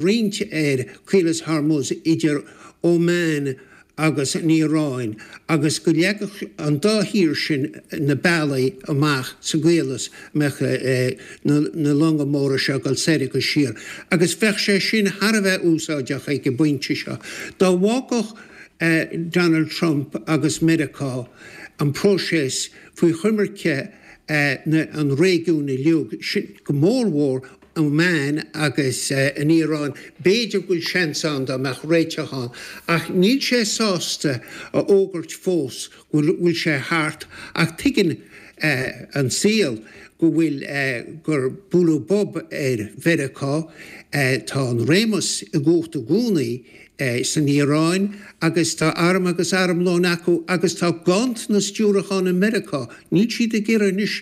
roinnt ar Chaolas Hormuz idir Óman agus an Iaráin agus go leagfadh an dá thír sin na bealaí amach sa gcaolas a mbeadh na longa móra seo ag dul soir agus siar agus bheadh sé sin thar a bheith úsáideach ag an bpointe seo. Dá bhfágfadh Donald Trump agus Meiriceá an próiseas faoi choimirce an réigiúin uilig, go mór mhór. Óman agus an Iaráin, b'fhéidir go bhfuil seans ann go mbeadh réiteach ann, ach níl sé sásta a fhógairt fós go bhfuil sé thart ach tuigeann an saol go bhfuil gur bualadh bob ar Mheiriceá, tá an réimeas i gcumhacht i gcónaí. é san Iaráin agus tá arm agus armlón acu agus tá ganntanas diúrachán i Meiriceá. Níl siad ag iarraidh anois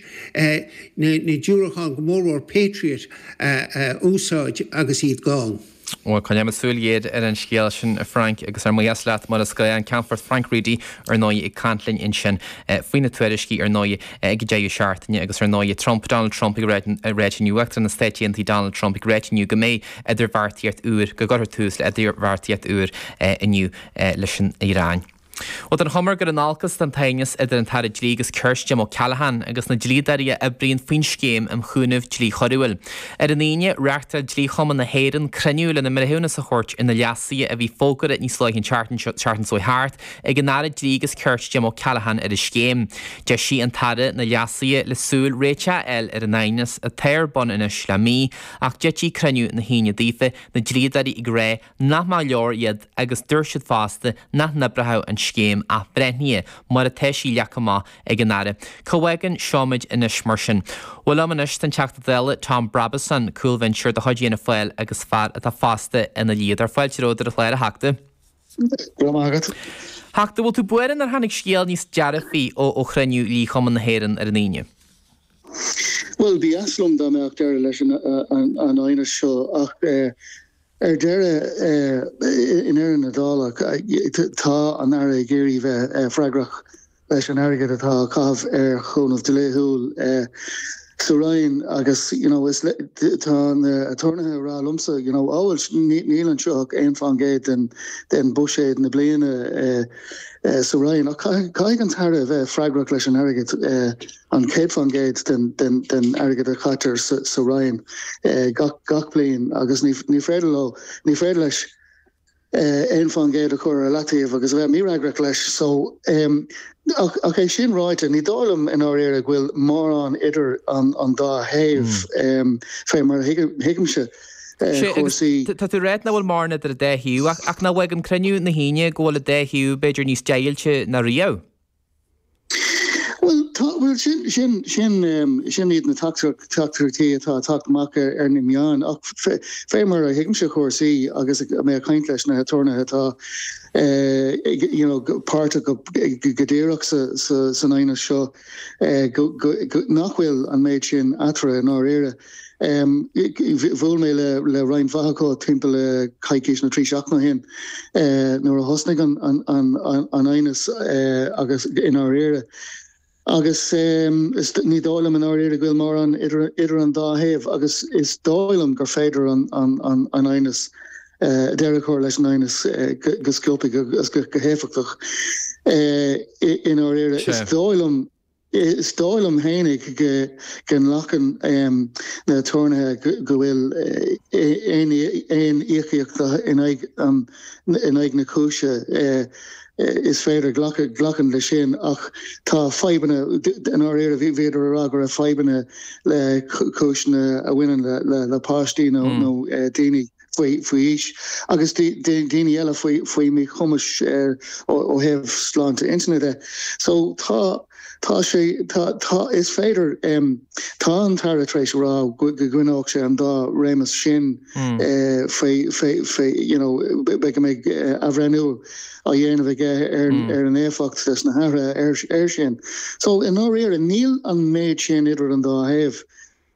na diúracháin, go mórmhór Patriot, a úsáid agus iad gann. Bhuel, coinneoimid súil ghéar ar an scéal sin, a Frank, agus go raibh maith agat, mar is gnách, an Ceannfort Frank Reidy, ar ndóigh, ag caint linn ansin faoi na tuairiscí, ar ndóigh, ag deireadh seachtaine agus, ar ndóigh, Trump, Donald Trump, ag deimhniú, Uachtarán na Stáit Aontaithe Donald Trump, ag deimhniú go mbeidh. idirbheartaíocht úr, go gcuirfear tús le idirbheartaíocht úr inniu leis an Iaráin. Bhuel, tá an chuma gur ag dul in olcas atá an t-aighneas idir an tAire Dlí agus Cirt, Jim O'Callaghan, agus na dlíodóirí a oibríonn faoin scéim um chúnamh dlí choiriúil. Ar an Aoine, reáchtáil Dlí-Chumann na hÉireann cruinniú lena mbreithiúnas a thabhairt ar na leasuithe a bhí fógartha níos luaithe an tseachtain seo thart ag an Aire Dlí agus Cirt, Jim O'Callaghan, ar an scéim. D'eisigh an tAire na leasuithe le súil réiteach a fháil ar an aighneas, atá ar bun anois le mí, Ach d'eitigh cruinniú na hAoine daofa, na dlíodóirí ag rá nach mba leor iad agus dúirt siad fosta nach n-oibrefadh an scéim athbhreithnithe mar atá sí leagtha amach ag an Aire. Cá bhfágann seo muid anois mar sin? Bhuel liom anois tá an Teachta Dála Tom Brabazon, cúlbhinseoir de chuid Fhianna Fáil agus fear atá fosta ina dhlíodóir, fáilte romhat ar an chlár, a Theachta. Go raibh maith agat. A Theachta, an bhfuil tú buartha nár tháinig scéal níos dearfaí ó chruinniú Dhlí-Chumann na hÉireann ar an Aoine? Bhuel, ba dheas liom dá mbeadh deireadh leis an aighneas seo ach ar deireadh, i ndeireadh na dála, tá an tAire ag iarraidh bheith freagrach. leis an airgead atá á chaitheamh ar chúnamh dlíthiúil sa Roinn agus you know is tá na aturnaetha ag rá liomsa you know oh well níl anseo ach aon faoin gcéad den den buiséad na bliana sa Roinn ach caithfidh an tAire a bheith freagrach leis an airgead an céad faoin gcéad den den den airgead a chaitear sa sa Roinn gach gach bliain agus ní ní féidir leo ní féidir leis aon fán gcéad a chur ar leataobh agus a bheith mífhreagrach leis. Ach é sin ráite, ní dóigh liom i ndáiríre go bhfuil mórán idir an dá thaobh fé mar a thuigimse cúrsaí. Sé, agus tá tú ag rá nach bhfuil mórán idir an dá thaobh ach nach bhfágann cruinniú na hAoine go bhfuil an dá thaobh b'fhéidir níos deighilte ná riamh? Bhuel tá, bhuel sin, sin, sin, sin iad na teachtaireachtaí atá ag teacht amach ar na meáin ach fé mar a thuigimse chúrsaí agus mé ag caint leis na haturnaetha atá ag, you know, páirteach go díreach sa, sa, san aighneas seo go, go, go, nach bhfuil an méid sin eatarthu i ndáiríre. Bhuail mé le roinnt mhaith acu timpeall le coicís nó trí seachtaine ó shin nuair a thosnaigh an aighneas agus i ndáiríre agus ní dóigh liom i ndáiríre go bhfuil mórán idir an dá thaobh agus is dóigh liom gur féidir an aighneas, deireadh a chur leis an aighneas go sciobtha agus go héifeachtach i ndáiríre. Is dóigh liom Is dóigh liom fhéinig go nglacann na haturnaetha go bhfuil aon íocaíocht in aghaidh na cúise, is féidir, glacann leis sin ach tá fadhbanna, i ndáiríre bhíodar a rá go raibh fadhbanna le cúiseanna a bhaineann le páistí nó daoine. faoi aois agus daoine eile faoi míchumas ó thaobh sláinte intinne de. So tá tá sé tá tá is féidir tá an tAire tar éis a rá go go gcoinneoidh sé an dá réimeas sin faoi faoi you know beidh go mbeidh athbhreithniú á dhéanamh aige ar ar an éifeacht leis na hathruithe ar ar sin. So i ndáiríre níl an méid sin idir an dá thaobh.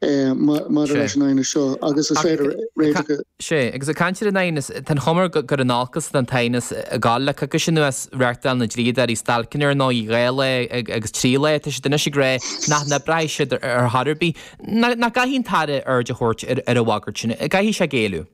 maidir leis an aighneas seo agus is féidir réiteach a. Sea, agus ag caint ar an aighneas, tá an chuma air gur in olcas atá an t-aighneas ag gabháil. Le coicís anuas, reáchtáil na dlíodóirí stailceanna ar ndóigh, dhá lá agus trí lá. Tá siad anois ag rá nach n-oibreoidh siad ar chor ar bith. Nach gcaithfidh an tAire aird a thabhairt ar an bhagairt sin? An gcaithfidh sé géilleadh?